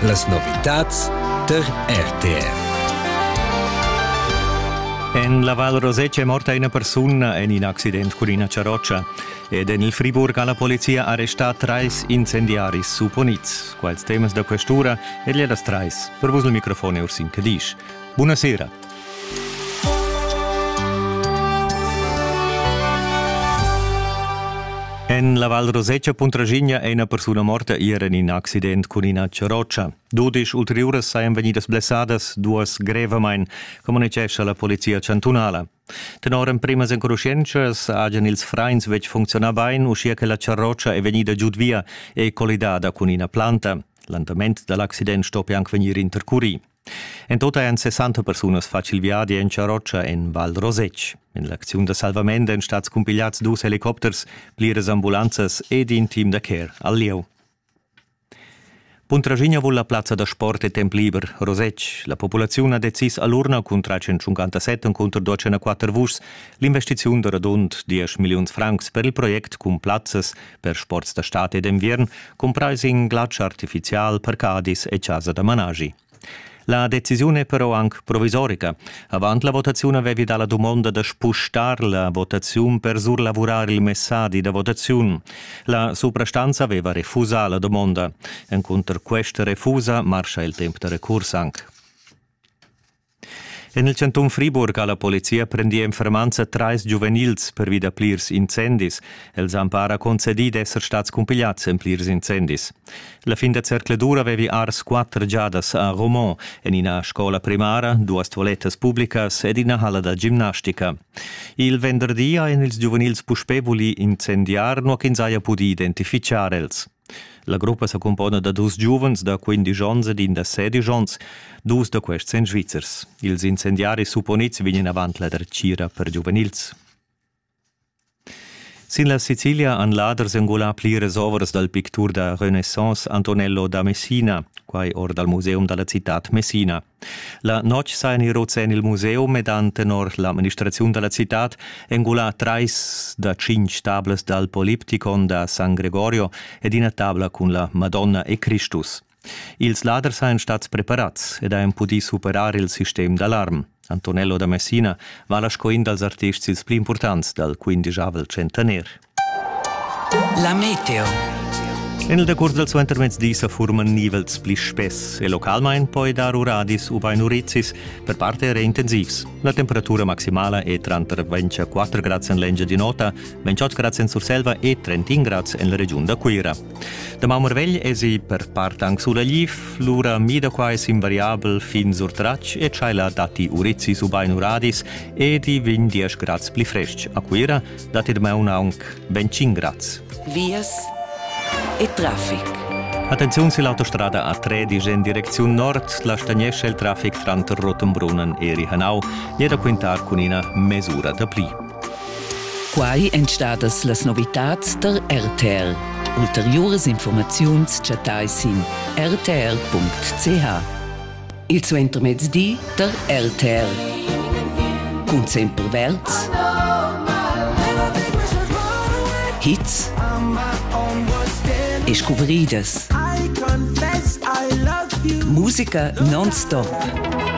Las novitads tar RTR. En la Val Rosetsch è morta ina persuna en in accident cun ina charrotscha ed en il Friburg ha la polizia arrestà trais incendiaris supponids. Quals temas da questura è er das trais. Per vus il microfon è Ursin Cadisch. Buonasera. En la Val Rosetscha Puntraschigna è ina persuna morta ier en in accident cun ina charrotscha. Dudisch ulteriuras sajan vegnidas blessadas, duas grevamain, communitgescha la polizia chantunala. Tenor emprimas enconuschientschas hajan ils frains betg funzionà bain, uschia che la charrotscha è vegnida giud via e collidada cun ina planta. L'andament da l'accident stoppi anc vegnir intercurì. En tota ein 60 persunas fatg il viadi en Charrotscha en Val Rosetsch. En l'acziun da salvament ein stats cumpigliads dus helicopters, pliras ambulanzas ed in team da care al lieu. Puntraschigna vul la plazza da sport e temp liber Rosetsch. La populaziun ha decis all'urna cun 357 cunter 204 vuschs l'investiziun da radund 10 milliuns francs per il project cun plazzas Per sports da stad e d'enviern cumprais in glatsch artifizial per Cadiz e chasa da managi. La decisiun è però anc provisorica. Avant la votaziun avevi dà la dumonda da spustar la votaziun per surlavurar il messadi da votaziun. La suprastanza aveva refusà la dumonda. Encunter questa refusa marscha il temp da recurs anc. En il chantun Friburg ha la polizia prendì en fermanza trais giuvenils pervi da plirs incendis. Els han para concedì d'esser stads cumpigliads en plirs incendis. La fin da zercledura avevi ars quatter giadas a Romont en ina scola primara, duas toilettas publicas ed ina halla da gimnastica. Il venderdi han ils giuvenils puspè vulì incendiar, nua ch'ins haja pudì identifichar els. La gruppa sa cumpona da dus giuvens da quindisch onns ed in da sedisch onns, dus da questi èn svizzers. Ils incendiaris supponids vegnan avant la dretgira per giuvenils. Sin la Sicilia han laders engulà pliras ovras dal pictur da Renaissance Antonello da Messina, quai or dal museum da la citad Messina. La notg sajan i rots en il museum ed han tenor l'administraziun da la citad engulà trais da tschintg tablas dal Poliptikon da San Gregorio ed ina tabla cun la Madonna e Cristus. Ils laders sajan stads preparads ed hajan pudì superar il sistem d'alarm. Antonello da Messina vala sco in dals artists ils pli impurtants dal quindijavel centenair. La meteo. En il decurs dals suentermezs dis sa furman nivels pli spess e localmain poi dar uradis ubain urizis, per parte era intensivs. La temperatura maximala è tranter 24 grads en l'Engia di Nota, 28 grads en Surselva e 31 grads en la regiun da Cuira. Da Maumărvegl esi per part anc sulagliv, l'ura mida qua es invariabel fin sur Trac e tschaila datti urizis ubain uradis ed i vegn 10 grads pli frestg a Cuira, dat ir meun aunc ventschin grads. Vias e traffic. Attenziun sil autostrada A3 disch en direcziun nord, la stagnescha il traffic tranter Rottenbrunnen e Rihanau e da quintar cun ina mesura da pli. Quai èn stadas las novitads tar RTL. Ulteriuras informaziuns chattai sin rtl.ch. il suentermezdi tar RTR. Cun sempre verds, hits e scuvridas. Musica non-stop.